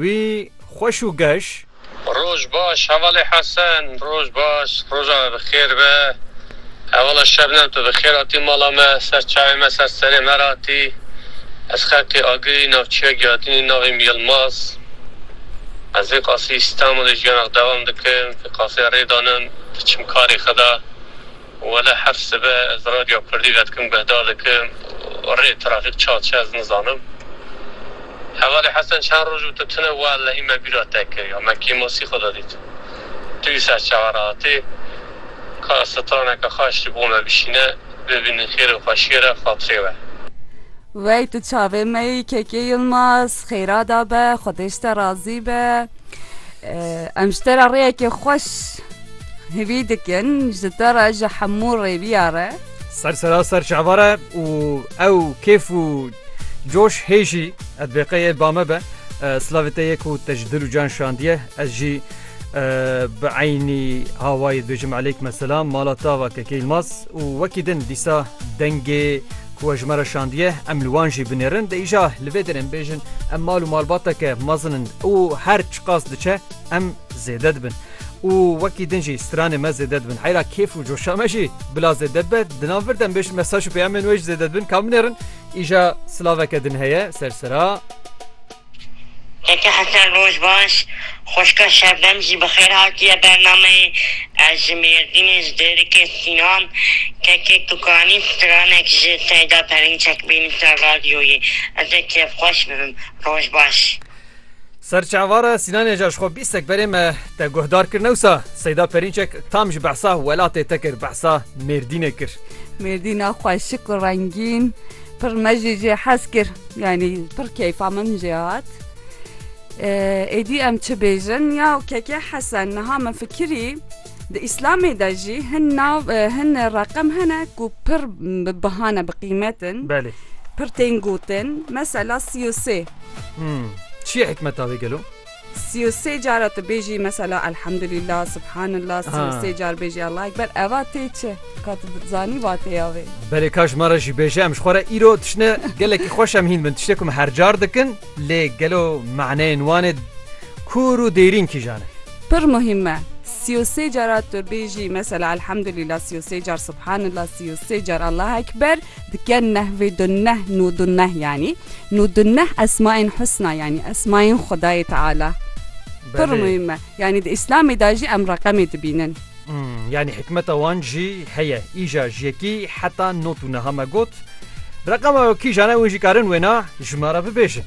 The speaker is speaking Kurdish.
Wî xweş û geş. Roj baş hevalê Hesen. Roj baş, roja me bi xêr be. Hevala Şebnem tu bi xêr hatî mala me, ser çavê me, ser serê me re hatî. Ez xelkê Agirî, navçîya Giadînî, navê min Yilmaz. Ez vê qasî Îstanbulê jiyana xwe dewam dikim, vê qasê rê danim, diçim karê xwe de. Wele her sibe ez radyoya kurdî vedikim guhdar dikim û rê trafîk çawa diçe ez nizanim. Hevalê Hesen çend roj û tu tune wellehî me bîra te kir ya me kêmosî xwe da dît tu yî ser çawa re hatî. Ka ez straneke xwe eştî bo me bişîne bibînin xêrê xwe şêre xatirê we. Wey tu çavê me yî Keke Yilmaz xêra da be xwedêj te razî be. Em ji te re rêyekê xweş. Hêvî dikin ji te re ji hemû rêviya re. Ser sera ser çavare û ew kêf û coş hê jî et bêqeyê ba me be. Slavê te yê ku te ji dil û can şandiye ez jî bi eynî hawayê dibêjim eleykum selam mala tava kekê Yilmaz û wekî din dîsa dengê ku ji me re şandiye em li wan jî binêrin de îja li vê derên bêjin em mal û malbateke mezin in û her çiqas diçe em zêde dibin. û wekî din jî stranê me zêde dibin heyra kêf û coşa me jî bila zêde dibe di nav vir de em bêjin mesaj û peyamên wê jî zêde dibin ka binêrin îja silaveke din heye ser sira Eke Hesen roj baş Xoşka Şebnem jî bi xêr hatiye bernameyê Ez ji Mêrdînê ji Dêrikê Sînan kekê Tukanî stranek ji Seyda Perinçek bînî ser radyoyê Ez ê kêfxweş bibim roj baş. Serçavara Sînanê ja ji xwe bîst sekberê me te guhdar kir newsa Seyda Perînçek tam ji behsa welatê te kir behsa Mêrdînê kir. Mêrdîna xwe şik û rengîn pir me jî jê hez kir yanî pir keyfa min jê hat. Êdî em çi bêjin ya kekê hesen niha min fikirî Di Îslamê de jî hin nav hin reqem hene ku pir bi biha ne bi qîmet in. Belê. Pir tên gotin. Mesela sî û sê. Hmm. Çi ye hikmeta wê gelo? Sî û sê cara tu bêjî mesela Elhamdulîllah, Subhanallah, sî û sê car bêjî Allahu Ekber. Eva tê çi? Ka tu zanî vatêya wê. Belê ka ji me re jî bêje em ji xwe re îro tiştine gelekî xweş em hîn bin. Tiştê ku em her car dikin. Lê gelo maneyên wan ê kûr û dêrîn kîjan in? Pir muhîm e. Sî û sê cara tu bêjî mesela Elhamdulîla sî û sê car Subhanila sî û sê car Allah Ekber dike nehvê du neh nû du neh yanî nû du neh esmaên husna yanî esmaên Xwedayê Teala pir muhîm e. Yanî di Îslamê de jî em reqemê dibînin. Yanî hikmeta wan jî heye. Îja ji yekî heta no tû niha me got. Reqema wekîjan e hûn jî karin wêna ji me re bibêjin.